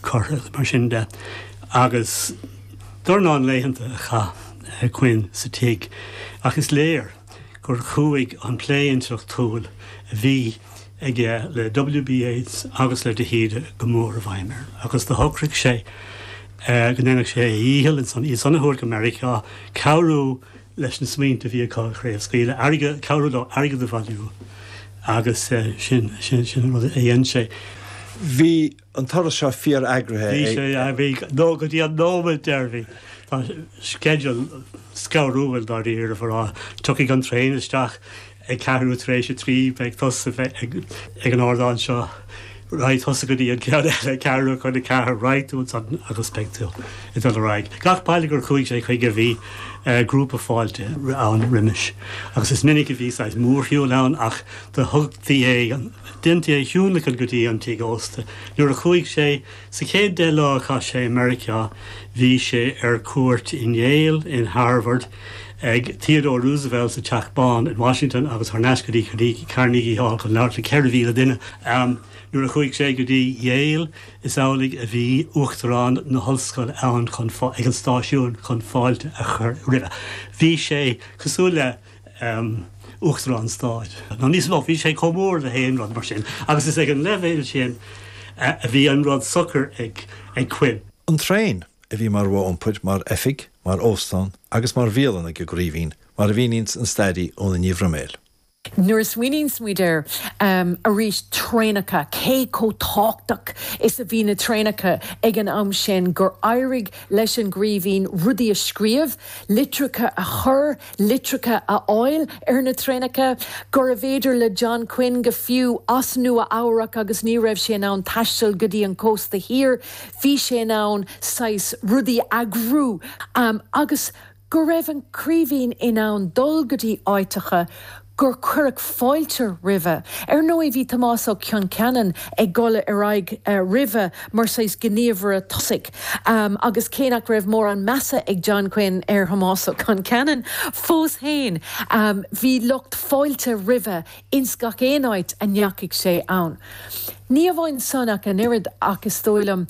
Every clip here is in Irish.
curtha, mar sin de, agus an dornán laethanta a chaith Quinn sa tigh, ach is léir gur chuaigh an plé intleachtúil a bhí aige le W.B. Yeats agus le de hÍde go mór i bhfeidhm air, agus do shocraigh sé go ndéanfadh sé a dhícheall, eisean a thabhairt go Meiriceá, cabhrú leis na smaointe a bhí acu a chraobhscaoileadh, airgead, cabhrú leo airgead a bhailiú, agus sin an rud a dhein sé. Bhí an turas seo fíor-eagraithe ag. Nó go dtí an nóiméad deireanaí. Bhí an sceideal scanrúil dáiríre, mar a déarfá. Tiocfaidh an traein isteach ag ceathrú tar éis a trí, beidh tusa ag an ardán seo, raghaidh tusa go dtí an ceann eile ag ceathrú chun a ceathair, raghaidh tú ansan agus beidh tú ag dul ar aghaidh. Gach baile gur chuaigh sé chuige bhí grúpa fáilte ann roimis agus is minic a bhí saghas mórshiúil ann ach do thugtaí é, deintí é a thionlacan go dtí an tigh ósta. Nuair a chuaigh sé sa chéad deich lá a chaith sé i Meiriceá, bhí sé ar cuairt in Yale, in Harvard, ag Theodore Roosevelt sa Teach Bán in Washington agus thar n-ais go dtí Carnegie Hall chun labhairt le 4,000 duine. Nuair a chuaigh sé go dtí Yale, is amhlaidh a bhí Uachtarán na hOllscoile ann chun ag an stáisiún chun fáilte a chur roimhe. Bhí sé cosúil le. Uachtarán Stáit, nó níos mó, bhí sé chomh mór le haon rud mar sin, agus is ag an leibhéal sin a bhí an rud socair ag Quinn. An traein, a bhí mar mhodh iompair, mar oifig, mar óstán agus mar bhialann ag an gCraoibhín, mar a mhíníonns an stairí Úna Ní Bhroiméil. Nuair a smaoiníonns muid ar arís, traenacha, cé chomh tábhachtach is a bhí na traenacha ag an am sin, gur éirigh leis an gCraoibhín rudaí a scríobh, litreacha a chur, litreacha a fháil ar na traenacha, gurbh fhéidir le John Quinn, go fiú is é i Nua-Eabhrac agus ní raibh sé in ann taisteal go dtí an cósta thiar, bhí sé in ann saghas rudaí a eagrú, agus go raibh an Craoibhín in ann dul go dtí áiteacha, gur cuireadh fáilte roimhe. Ar ndóigh, bhí Tomás Ó Concheanainn ag dul ar aghaidh roimhe mar saghas gníomhaire tosaigh agus cé nach raibh mórán measa ag John Quinn ar Thomás Ó Concheanainn, fós féin, bhí lucht fáilte roimhe ins gach aon áit a ndeachaigh sé ann. Ní amháin sin ach an oiread ach is dóigh liom,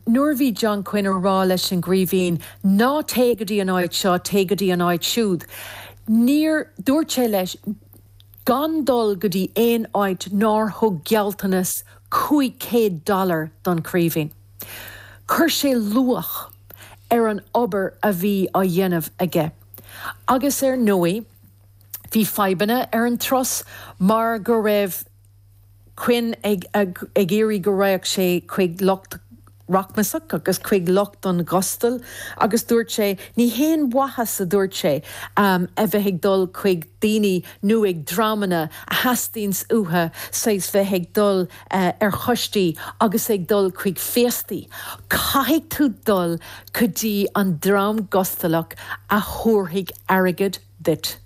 nuair a bhí John Quinn ag rá leis an gCraoibhín, 'ná téigh go dtí an áit seo, téigh go dtí an áit siúd', Níor dúirt sé leis gan dul go dtí aon áit nár thug gealltanas cúig céad dollar don Chraoibhín. Chuir sé luach ar an obair a bhí á dhéanamh aige. Agus ar ndóigh bhí fadhbanna ar an turas mar go raibh. Quinn ag iarraidh go raghadh sé chuig lucht rachmasach agus chuig lucht an ghustail agus dúirt sé, ní haon mhaith, a dúirt sé, a bheith ag dul chuig daoine nó dreamanna a theastaíonns uathu saghas bheith ag dul ar choistí agus ag dul chuig féastaí, caithfidh tú dul go dtí an dream gustalach a thabharfaidh airgead duit.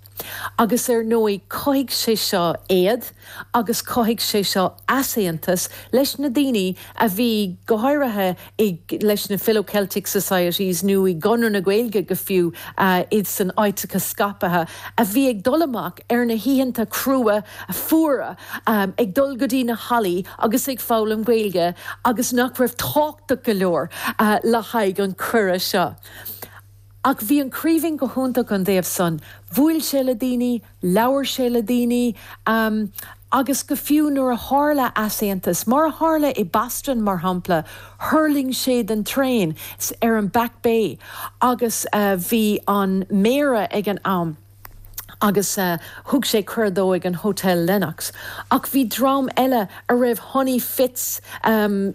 Agus ar ndóigh chothaigh sé seo éad agus chothaigh sé seo easaontas leis na daoine a bhí, go háirithe i, leis na Philo-Celtic Societies nó i gConradh na Gaeilge go fiú, iad san áiteacha scaipthe, a bhí ag dul amach ar na hoícheanta crua, fuara, ag dul go dtí na hallaí agus ag foghlaim Gaeilge agus nach raibh tábhachtach go leor le haghaidh an cuireadh seo. Ach bhí an Craoibhín go hiontach ón dtaobh san, bhuail sé le daoine, labhair sé le daoine, agus go fiú nuair a tharla easaontas, mar a tharla i Boston mar shampla, thuirling sé den traein ar an Back Bay agus bhí an Méara ag an am, agus thug sé cuireadh dó ag an Hotel Lenox, ach bhí dream eile a raibh Honey Fitz,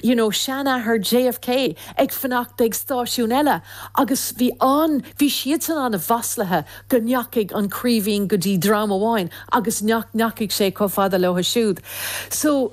you know, seanathair JFK, ag fanacht ag stáisiún eile agus bhí an, bhí siadsan an-mhaslaithe go ndeachaigh an Craoibhín go dtí dream amháin agus nach ndeachaigh sé chomh fada leotha siúd. So.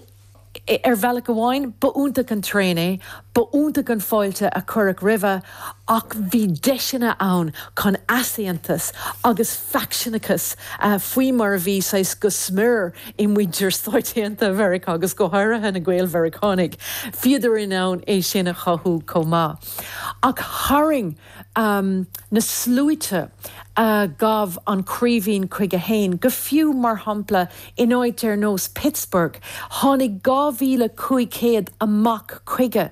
Ar bhealach amháin, ba iontach an traein é, ba iontach an fáilte a cuireadh roimhe, ach bhí deiseanna ann chun easaontas agus faicseanachas, faoi mar a bhí, saghas, go smior i muintir Stáit Aontaithe Mheiriceá agus go háirithe na Gael-Mheiriceánaigh, bhíodar in ann é sin a chothú chomh maith. Ach tharraing. na sluaite a ghabh an Craoibhín chuige féin, go fiú, mar shampla, in áit ar nós Pittsburgh, tháinig 2,500 amach chuige